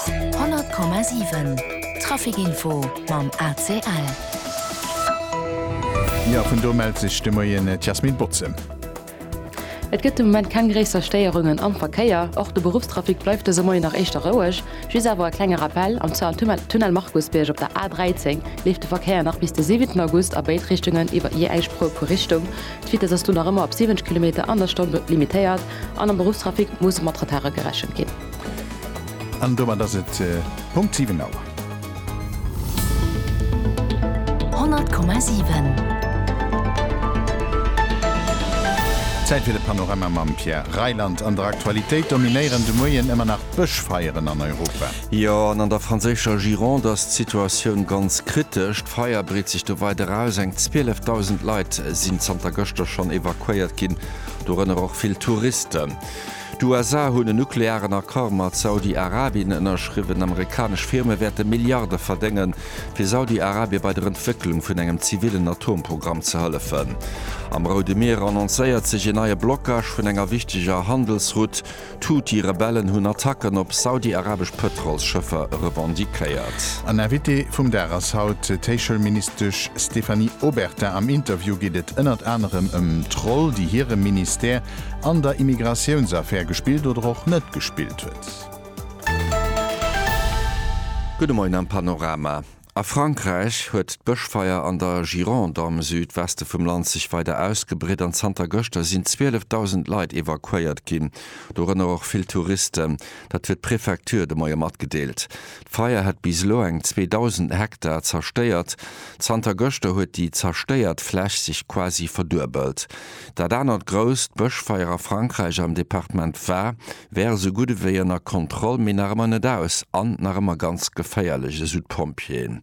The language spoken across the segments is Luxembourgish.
100,7 Trafic Info mam ACL. Jo, vun do mellt sech de Moien d'Yasmine Botze. Et gëtt de Moment keng gréisser Stéierungen am Verkéier. Och de Beruffstrafic bleift dëse Moien nach éischter roueg. Just awer e klenge Rappell, Am Zuel am Tunnel Markusbierg op der A 13 leeft de Verkéier nach bis de 7 August a béid Richtungen iwwer jee eng Spur pro Richtung. D'Vitess ass do nach ëmmer op 70 Kilometer an der Stonn limitéiert. An am Beruffstrafic muss mat Retarde gerechent ginn. An domat ass et Punkt 7 Auer. 100,7. Zäit fir de Panorama mam Pierre Reyland. An der Aktualitéit dominéieren de Moien ëmmer nach d'Bëschfeieren an Europa. Jo, an an der franséischer Gironde ass d'Situatioun ganz kritesch. D'Feier breet sech do weider aus. Eng 12.000 Leit sinn zanter gëschter schonn evakuéiert ginn. dorënner och vill Touristen. D'USA hunn en nuklearen Accord mat Saudi-Arabien ënnerschriwwen. Amerikanesch Firme wäerte Milliarde verdéngen, fir Saudi-Arabien bei der Entwécklung vun engem zivillen Atomprogramm ze hëllefen. Am Roude Mier annoncéiert sech een neie Blockage vun enger wichteger Handelsroute. D'Houthi-Rebellen hunn Attacken op saudi-arabesch Pëtrolsschëffer revendiquéiert. An Invité vum Dag ass haut d'Héichschoulministesch Stéphanie Obertin. Am Interview geet et ënnert anerem ëm d'Roll, déi hire Ministère an der Immigratiounsaffär gespillt oder och net gespillt huet. Gudde Moien am Panorama. A Frankräich huet d'Bëschfeier an der Gironde am Südweste vum Land sech weider ausgebreet an zanter gëschter sinn 12.000 Leit evakuéiert ginn, dorënner och vill Touristen. Dat huet d'Prefecture de Moie matgedeelt. D'Feier hätt bis elo eng 2.000 Hektar zerstéiert. Zanter gëschter huet déi zerstéiert Fläch sech quasi verduebelt. Dat anert grousst Bëschfeier a Frankräich am Departement Var wär esou gutt ewéi ënner Kontroll, mee nach ëmmer net aus an nach ëmmer ganz geféierlech, esou d'Pompjeeën.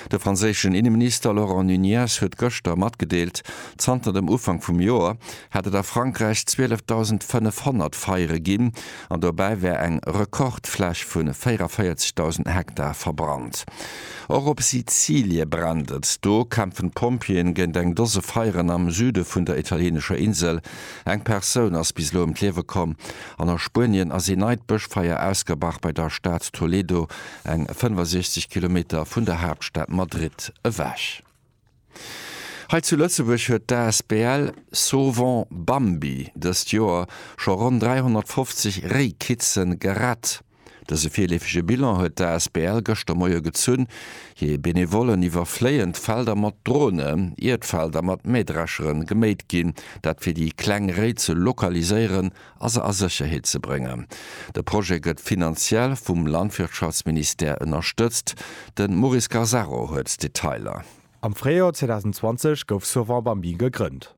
De franséischen Inneminister Laurent Nunez huet gëschter matgedeelt, zanter dem Ufank vum Joer hätt et a Frankräich 12.500 Feiere ginn an dobäi wär eng Rekordfläch vu 44.000 Hektar verbrannt. Och op Sizilie brennt et. Do kämpfen d'Pompjeeën géint eng Dose Feieren am Süde vun der italieenescher Insel. Eng Persoun ass bis elo ëm d'Liewe komm an a Spuenien ass ee neit Bëschfeier ausgebrach bei der Stad Toledo, eng 65 Kilometer vun der Haaptstad Madrid ewech. Hei zu Lëtzebuerg huet d'Asbl Sauvons Bambi dëst Joer scho ronn 350 Réi Kitzen gerett. Dëse virleefege Bilan huet d'ASBL gëschter Moie gezunn. Hir Benevollen iwwerfléien d'Felder mat Drone, ier d'Felder mat Mähdreschere geméit ginn, dat fir déi kleng Réi ze lokaliséieren a se a Sécherheet ze bréngen. De Projet gëtt finanziell vum Landwirtschaftsministère ënnerstëtzt. De Maurice Gazzaro huet d'Detailer. Am Fréijoer 2020 gouf Sauvant Bambin gegrënnt.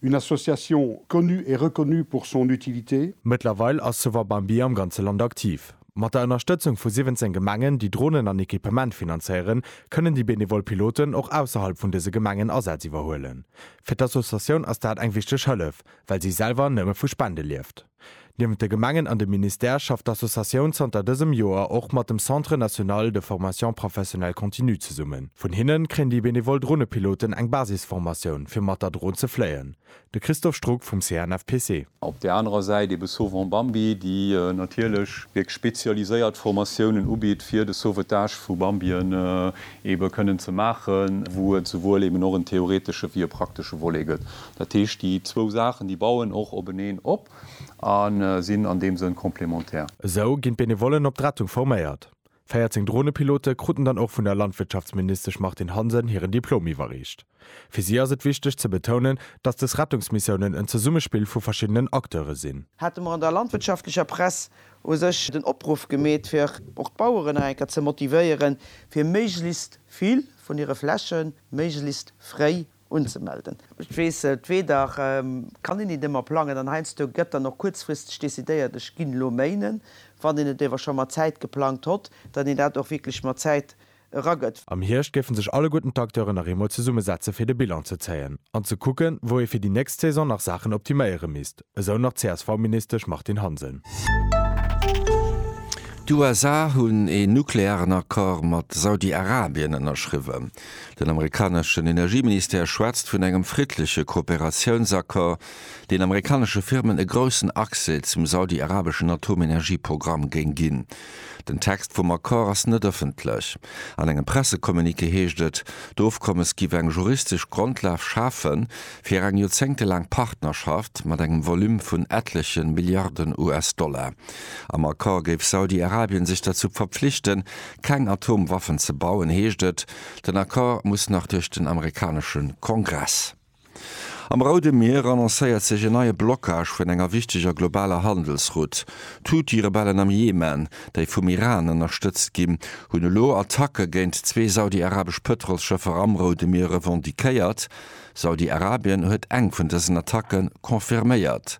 Une association connue et reconnue pour son utilité. Mëttlerweil ass Sauvons Bambi am ganze Land aktiv. Mat der Ënnerstëtzung vu 17 Gemengen, déi Dronen an Equipement finanzéieren, kënnen déi benevol Piloten och ausserhalb vun dëse Gemengen Asätz iwwerhuelen. Fir d'Associatioun ass dat eng wichteg Hëllef, well si selwer nëmme vu Spende lieft. Niewent de Gemengen an dem Ministère schafft d'Associatioun zanter dësem Joer och mat dem Centre national de formation professionnelle continue zesummen. Vun hinnen kréien déi benevol Dronepiloten eng Basisformatioun fir mat der Dron ze fléien. De Christoph Struck vum CNFPC. Op där anerer Säit ebe Sauvons Bambi, déi natierlech wierklech spezialiséiert Formatiounen ubitt fir de Sauvetage vu Bambien ebe kënnen ze maachen, wou et souwuel eben och en theoretesche wéi e praktesche Volet gëtt. Dat heescht, déi zwou Saachen, déi bauen och openeen op a sinn an deem Sënn complémentaire. Esou ginn d'Benevollen op d'Rettung forméiert. 14 Dronepilote kruten dann och vun der Landwirtschaftsministesch Martine Hansen hiren Diplom iwwerreecht. Fir si ass et wichteg ze betounen, datt des Rettungsmissiounen en Zesummespill vu verschiddenen Acteure sinn. hate mer an der landwirtschaftlecher Press u sech den Opruff gemeet, fir och d'Baueren nach eng Kéier ze motivéieren, fir méiglechst vill vun hire Fläche méiglechst fréi unzemelden. Ech weess et, weder kann een et ëmmer plangen an heiansdo gëtt dann och kuerzfristeg decidéiert, ech ginn elo méinen, wann een et ewer scho mat Zäit geplangt hott, datt een dat och wierklech mat Zäit eragëtt. Am Hierscht géifen sech alleguerten d'Acteuren nach eemol zesummesetze fir de Bilan ze zéien an ze kucken, wou ee fir déi nächst Saison nach Saachen optiméiere misst. Esou nach d'CSV-Ministesch Martine Hansen. D'USA hunn een nuklearen Accord mat Saudi-Arabien ënnerschriwwen. Den amerikaneschen Energieministère schwätzt vun engem friddleche Kooperatiounsaccord, deen amerikanesche Firmen e groussen Accès zum saudi-arabeschen Atomenergieprogramm géing ginn. Den Text vum Accord ass net ëffentlech. An engem Pressecommuniqué heescht et, d'Ofkommes giff eng juristesch Grondlag schafe fir eng joerzéngtelaang Partnerschaft mat engem Volume vun etleche Milliarden US-Dollar. Am Accord géif Saudi-Arabien sech derzou verpflichten, keng Atomwaffen ze bauen, heescht et. Den Accord muss nach duerch den amerikanesche Kongress. Am Roude Mier annoncéiert sech en neie Blockage vun enger wichteger globaler Handelsroute. D'Huthi-Rebellen am Jemen, déi vum Iran ënnerstëtzt ginn, hunn elo Attacke géint zwee saudi-arabesch Pëtrolsschëffer am Roude Mier revendiquéiert. Saudi-Arabien huet eng vun dësen Attacke confirméiert.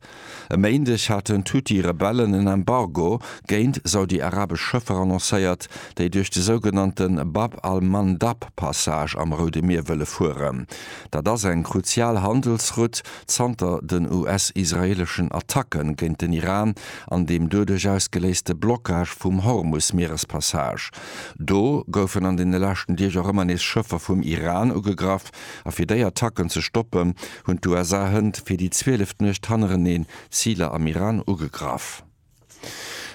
E Méindeg haten d'Huthi-Rebellen en Embargo géint saudi-arabesch Schëffer annoncéiert, déi duerch de sougenannte Bab al-Mandab-Passage am Roude Mier wëlle fueren. Dat ass eng kruzial Handelsrutt zanter den US-israeeleschen Attacke géint den Iran an deem doduerch ausgeléiste Blockage vum Hormus-Mierespassage. Do goufen an deene leschten Deeg och ëmmer nees Schëffer vum Iran ugegraff a fir déi Attacken ze stoppen, hunn d'USA hënt fir déi zwieleft Nuecht hannereneen Ziler am Iran ugegraff.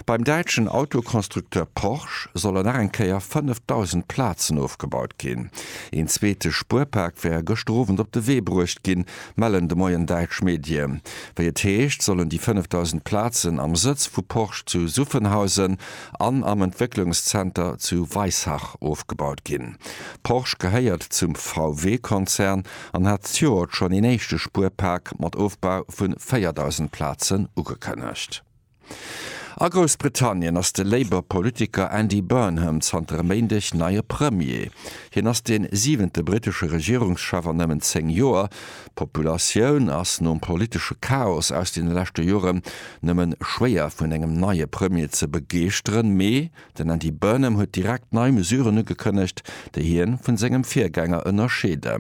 Beim däitschen Autoconstructeur Porsche solle nach eng Kéier 5.000 Plazen ofgebaut ginn. Een zweete Spuerpak wär gëschter Owend op de Wee bruecht ginn, mellen de Moien däitsch Medie. Wéi et heescht, sollen déi 5.000 Plazen am Sëtz vu Porsche zu Suffenhausen an am Entwécklungszenter zu Weissach ofgebaut ginn. Porsche gehéiert zum VW-Konzern an hat d'Joert schonn een éischte Spuerpak mat Ofbau vu 4.000 Plazen ugekënnegt. A Groussbritannien ass de Labour Politiker Andy Burnham zanter e Méindeg neie Premier. Hien ass dee siwente brittesche Regierungschef an nëmmen zéng Joer. D'Populatioun ass nom politesche Chaos aus deene leschte Jore nëmmen schwéier vun engem neie Premier ze begeeschteren, mee Den Andy Burnham huet direkt nei Mesuren ugekënnegt, déi hien vun sengem Virgänger ënnerscheede.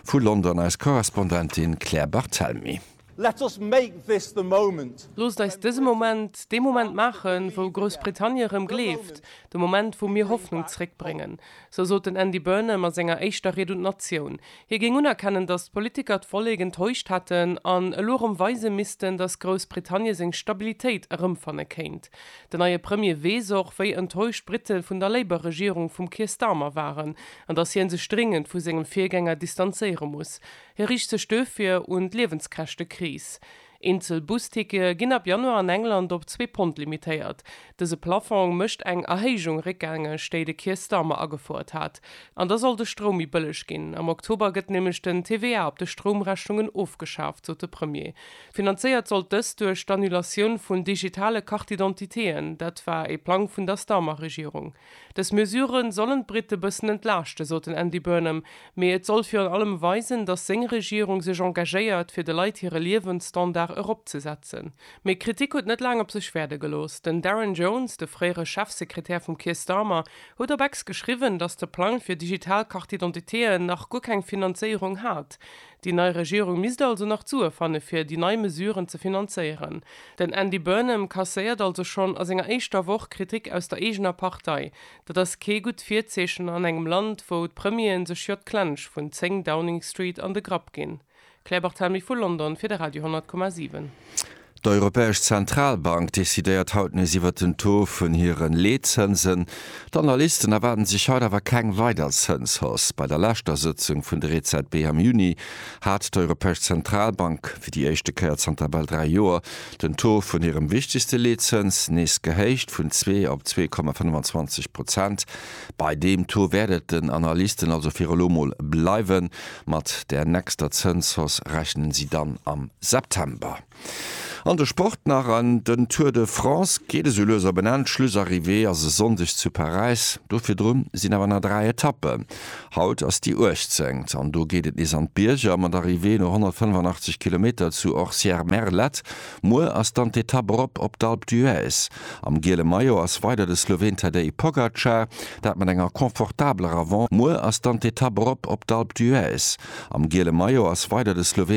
Vu London eis Korrespondentin Claire Barthelmy. Let us make this the moment! Loosst eis dëse Moment dee Moment maachen, wou Groussbritannie erëm gleeft, de Moment, wou mir Hoffnung zréckbréngen. Sou sot den Andy Burnham a senger éischter Ried un d'Natioun. Hie géing unerkennen, datt d'Politiker d'Vollek enttäuscht hätten an elo erëm weise missten, datt Groussbritannie seng Stabilitéit erëmfanne kéint. Den neie Premier weess och, wéi enttäuscht d'Britte vun der Labour-Regierung vum Keir Starmer waren, an datt hien sech dréngend vu sengem Virgänger distanzéiere muss. Hie riicht sech duerfir un d'Liewenskäschtekris. Eenzel Bustickete ginn ab Januar an England op zwee Pond limitéiert. Dëse Plaffong mécht eng Erhéijung réckgängeg, déi de Keir Starmer agefouert hat. An da soll de Stroum méi bëlleg ginn. Am Oktober gëtt nämlech den TVA op de Stroumrechnungen ofgeschaaft, sot de Premier. Finanzéiert sollt dëst duerch d'Annulatioun vun digitale Carte-d'identitéen. Dat war ee Plang vun der Starmer-Regierung. Dës Mesure sollen d'Brite bëssen entlaaschten, sot den Andy Burnham, mee et soll virun allem weisen, datt seng Regierung sech engagéiert, fir de Leit hire Liewensstandard eropzesetzen. Mee Kritik huet net laang op sech wäerde gelooss. Den Darren Jones, de fréiere Chefsekretär vum Keir Starmer, huet op X geschriwwen, datt de Plang fir digital Carte-d'identitéen nach guer keng Finanzéierung hat. Déi nei Regierung misst also nach d'Sue fanne fir déi nei Mesuren ze finanzéieren. Den Andy Burnham kasséiert also schonn a senger éischter Woch Kritik aus der eegener Partei. Dat ass kee gutt Virzeechen an engem Land, wou d'Premieren sech jo d'Klensch vun 10 Downing Street an de Grapp ginn. Claire Barthelmy vu London fir de Radio 100,7. D'Europäesch Zentralbank decidéiert haut nees iwwert den Taux vun hire Leetzënsen. D'Analysten erwaarden sech haut awer keng weider Zënshausse. Bei der leschter Sëtzung vun der EZB am Juni hat d'Europäesch Zentralbank fir déi éischte Kéier zanter bal dräi Joer den Taux vun hirem wichtegste Leetzëns nees gehéicht, vun zwee op zwee Komma 25 Prozent. Bei deem Taux wäert et den Analysten also fir elo mol bleiwen. Mat der nächster Zënshausse rechnen si dann am September. An de Sport nach, an den Tour de France geet esou lues op en Enn. D'Schlussarrivée ass e Sonndeg zu Paräis. Do virdru sinn awer nach 3 Etappen. Haut ass déi 18. an do geet et nees an d'Bierger mat Arrivée no 185 Kilometer zu Orcières-Merlette. Muer ass dann d'Etapp erop op d'Alpe d'Huez. Am giele Maillot ass weider de Sloween Tadej Pogacar, dat mat enger confortabeler Avance Muer ass dann d'Etapp erop op d'Alpe d'Huez. Am giele Maillot ass weider de Sloween.